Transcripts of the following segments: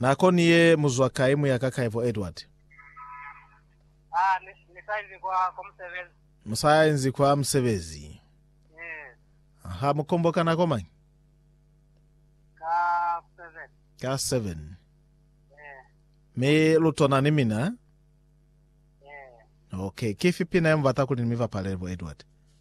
Nako ni ye mu zwa kai mu ya ka kai bo Edward? Ni sa inzi kwa musebezi. Mu sa inzi kwa musebezi. Ha mu kombo ka nako mañi? Ka seven. Ka seven. Mi lu tona ni mina? Okay. Kifi pina ye mu bata kuli ni mi bapalele bo Edward?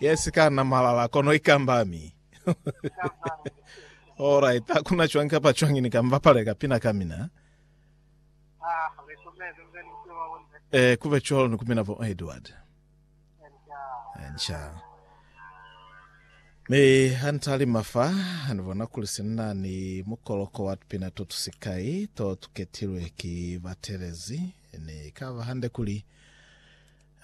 yes kana malala kono ikambami alright hakuna chwang kapa chwang ni kamba pale kapina kamina eh kube cholo ni kumina bo edward ncha mi hantali mafa anivona kuli sinna ni mukoloko wa tupina to tusikai to tuketilwe ki batelezi Ne kaba hande kuli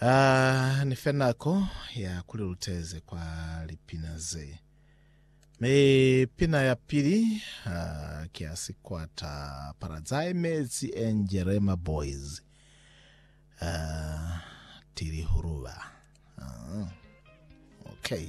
a ni fe nako ya kuli luteze kwa lipina ze. Mi pina ya pili a ki ya sikwata Paradise Metsi and Jerema Boys. A tili huruba. Ah, okay.